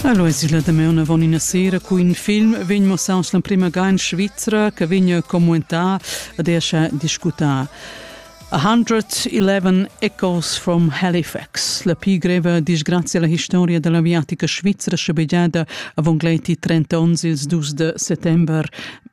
Alo es igl damaun avon ina sera cu in film vegn mossaus l'emprema ga in Svizra che vegn commentar ed escha discutar. A Hundred Eleven Echoes from Halifax, la pli greva disgrazia alla historia dell'aviatica svizra schabegiada avon gleiti 30 onns ils dus de settember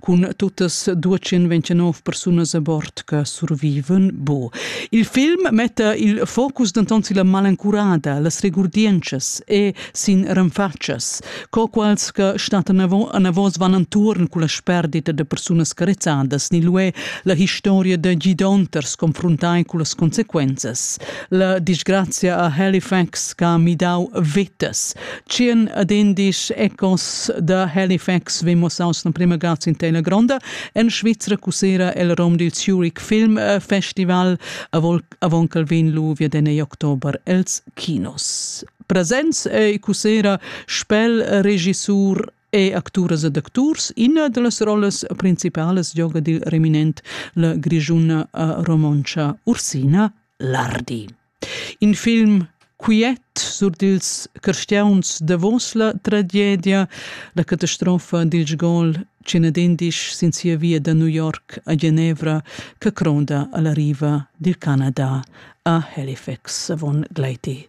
Cun tuttas 229 persunas a bord che survivan bu. Il film metta il focus denton sulla malencurada, las regurdientschas e sin renfatschas, co quals che stattan anavos van entuorn con la sperdita de persunas carezzadas ni lué la historia da gidonters confrontai con las consequenzas. La disgrazia a Halifax che ha midau vitas. Tschien ad indisch ecos da Halifax vegn mussaus la prima grazia in teila gronda. En Svizra cusera el rom dil Zurich Film Festival avon che vin lu via den oktober els kinos. Presents e cusera spel regissur è acturas ed acturs. Ina da las rollas principalas gioga dil reminent la grigiuna eh, romontscha Ursina Lardi. In film quiet sur dils cristiauns davos la tragedia, la catastrofa dil gol Cenadindisch sin sia via da New York a Genevra che cronda alla riva dil Canada a Halifax von Gleiti